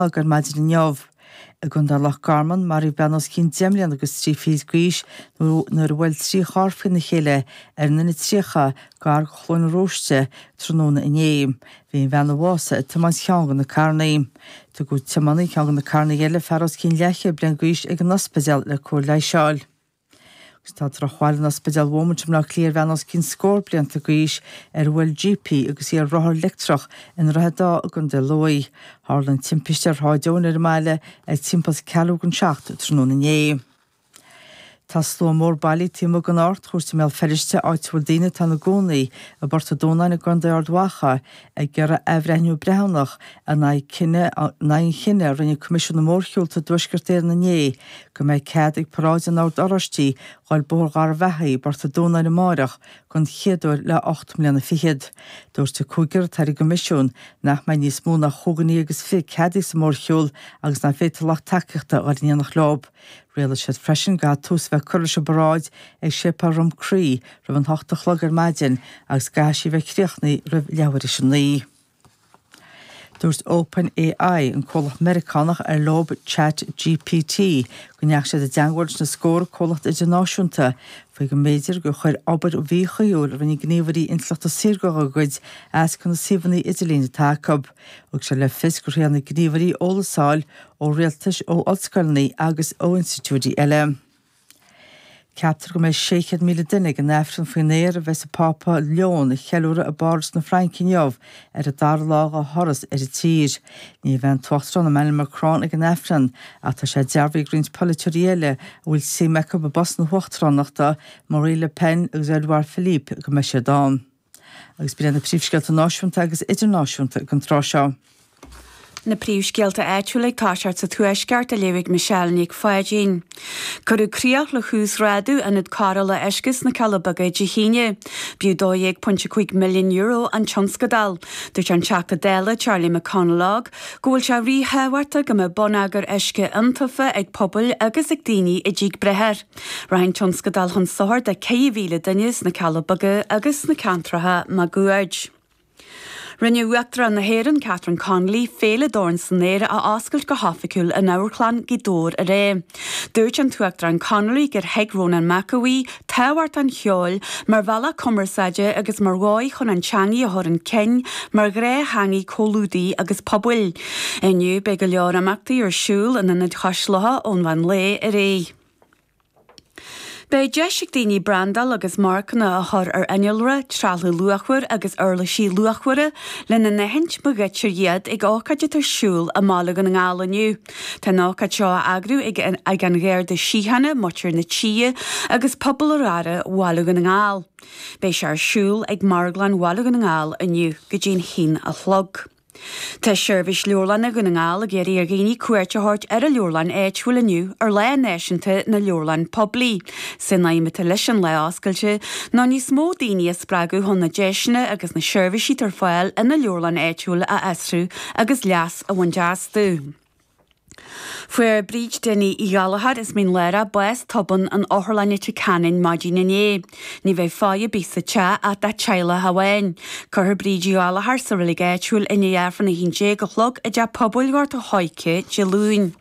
Agus ar maidin inniu, i gContae Loch Garman, maraíodh bean os cionn deich mbliana agus trí fichid d'aois nuair a bhuail trí charr faoina chéile ar an N30 gar do Chluain an Róiste tráthnóna inné. Bhí an bhean a bhásaigh ag tiomáint cheann de na carranaí. Tugadh tiománaí ceann de na carranaí eile, fear os cionn leathchéad bliain d'aois, chuig an ospidéal le cóir leighis a fháil. Agus tá drochbhail in Ospidéal Beaumont i mBaile Átha Cliath ar bhean os cionn scór blianta d'aois ar bhuail jíp í agus í ar rothar leictreach i nDroichead Átha i gContae Lú. Tharla an timpiste ar Shráid Eoin ar an mbaile ag timpeall's ceathrú chun a 7 tráthnóna inné. Tá slua mór bailí taobh amuigh den Ardchúirt i mBéal Feirste, áit a bhfuil daoine atá ina gcónaí i bPort a' Dúnáin i gContae Ard Mhacha, Ag iarraidh athbhreithniú breithiúnach in aghaidh an chinnidh a rinne Coimisiún na Mórshiúlta i dTuaisceart Éireann inné go mbeidh cead ag paráid an Oird Oráistí dul Bóthar Gharbhachaidh i bPort a' Dúnáin amárach den chéad uair le hocht mbliana fichead. Dúirt an cúigear atá ar an gCoimisiún nach mbeidh níos mó ná chúig dhuine agus fiche ceadaithe sa mórshiúl agus nach bhféadfar lucht tacaíochta a chur in éineacht leo. Rialaigh siad freisin go gcaithfidh tús a bheith curtha leis an bparáid ag Séipéal Dhrom Crí roimh an ocht a chlog ar maidin agus go gcaithfidh sí a bheith críochnaí roimh leathuair théis a naoi. Dúirt OpenAI, an comhlacht Meiriceánach ar leob Chat GPT, go ndeach siad i dteangmháil leis na scórtha comhlacht idirnáisiúnta faoi go mb'fhéidir gur chuir obair mhíchuibhiúil a rinne gníomhairí intleachta saorga dá gcuid as do na suíomhanna idirlín atá acu. Thug siad le fios go ndeachaigh na gníomhairí ag iarraidh eolas a fháil ó rialtais, ó ollscoileanna agus ó institiúidí eile. Ceaptar go mbeidh 600,000 duine ag an Aifreann faoin aer a bheas an Pápa Leon a cheiliúradh i bPáras na Fraince inniu ar an dara lá dá thuras ar an tír. Ní bheidh an tUachtarán Emmanuel Macron ag an Aifreann ach tá sé dearbhaithe ag roinnt polaiteoirí eile a bhfuil suim acu i bpost na huachtaránachta, Marine Le Pen agus Édouard Philippe, go mbeidh siad ann. Agus sin agaibh na príomhscéalta náisiúnta agus idirnáisiúnta ag an tráth seo. Na príomhscéalta áitiúla ag toiseacht sa Tuaisceart á léamh ag Michelle Nic Pháidín. Cuireadh críoch le huasghrádú Ionad Cóireála Uisce sna Cealla Beaga Dé hAoine. B'fhiú €12.5 milliún an tionscadal. Dúirt an Teachta Dála Charlie McConalogue go bhfuil sé ríthábhachtach go mbeadh bonneagar uisce iontaofa ag pobail agus ag daoine i dtithe. Beidh. Rachaidh an tionscadal chun sochair do 4,000 duine sna Cealla Beaga agus sna ceantracha maguaird. Rinne Uachtarán na hÉireann, Catherine Connolly, Féile Dorn san Aer a oscailt go hoifigiúil in Amharclann Ghaoth Dobhair aréir. Dúirt an tUachtarán Connolly gur thuig Rónán Mac Aodha tábhacht an cheoil mar bhealach cumarsáide agus mar dhóigh chun an teangaidh a chur chun cinn mar ghnáth-theangaidh comhluadair agus pobail. Inniu beidh go leor imeachtaí ar siúl in Ionad Chois Locha ón mheán lae ar aghaidh. Beidh deis ag daoine brandáil agus marcanna a chur ar innealra, trealamh luachmhar agus uirlisí luachmhara, lena n-aithint má ghoidtear iad, ag ócáid atá ar siúl i mBaile Dhún na nGall inniu. Tá an ócáid seo á eagrú ag an Gharda Síochána, Muintir na Tíre agus Pobal Oirthear Bhaile Dhún na nGall. Beidh sé ar siúl ag Marglann Bhaile Dhún na nGall inniu go dtí an haon a chlog. Tá seirbhís leabharlann Dhún na nGall ag iarraidh ar dhaoine cuairt a thabhairt ar a leabharlann áitiúil inniu ar Lá Náisiúnta na Leabharlann Poiblí. Is é an aidhm atá leis an lá oscailte ná níos mó daoine a spreagadh chun na deiseanna agus na seirbhísí atá ar fáil ina leabharlann áitiúil a fhiosrú agus leas a bhaint astu. Fuair Bríd Dinny Uí Ghallachóir as Mín Lárach bás tobann in Otharlann Leitir Ceanainn maidin inné. Ní bheidh faire ar bith sa teach ach dá teaghlach amháin. Cuirfear Bríd Uí Ghallachóir sa reilig áitiúil i ndiaidh Aifreann 11 a chlog i dTeach Pobail Ghort an Choirce Dé Luain.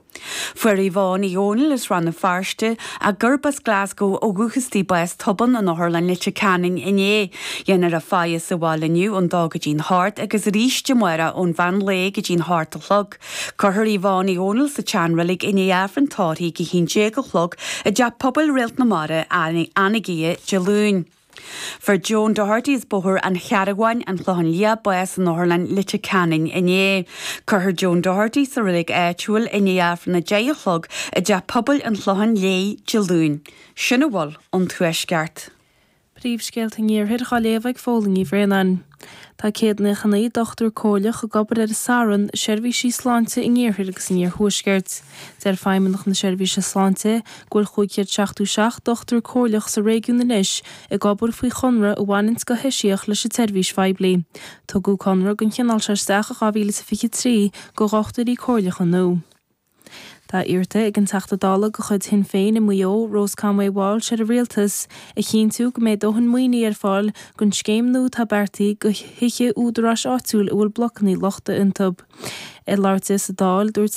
Fuair Yvonne Uí Dhónaill as Rann na Feirste, agus arb as Glasgow ó dhúchas di bás tobann in Otharlann Leitir Ceanainn inné. Déanfar a faire sa bhaile inniu ón dó go dtí an hocht agus arís amárach ón mheán lae go dtí an hocht a chlog. Cuirfear Yvonne Uí Dhónaill sa tseanreilig i ndiaidh Aifreann tórraidh a hAon Déag a chlog i dTeach Pobail Réalt na Mara Anagaire Dé Luain. Fuair Joan Doherty as Bóthar an Chairn Mhóir, An Clochán Liath bás in Otharlann Leitir Ceanainn inné. Cuirfear Joan Doherty sa reilig áitiúil i ndiaidh Aifreann a Deich a chlog i dTeach Pobail an Chlocháin Léith Dé Luain. Sin a bhfuil ón Tuaisceart. Príomhscéalta an Iarthair dhá léamh ag Póilín Ní Bhraonáin. Tá céad naocha naoi dochtúir comhairleach ag obair ar son Seirbhísí Sláinte an Iarthair agus an Iarthuaiscirt. Deir Feidhmeannach na Seirbhíse Sláinte go bhfuil 577 dochtúir comhairleach sa réigiún anois ag obair faoi chonradh a bhaineanns go heisiach leis an tseirbhís phoiblí. Tugadh conradh den chineál seo isteach in 2023 do dhochtúirí comhairleacha nua. Tá iarrta ag an Teachta Dála de chuid Shinn Féin i Maigh Eo, Rose Conway-Walsh ar an Rialtas a chinntiú go mbeidh dóthain maoinithe ar fáil don scéim nua atá beartaithe do thithe údaráis áitiúil a bhfuil blocanna lochtacha iontu. Ag labhairt di sa Dáil, dúirt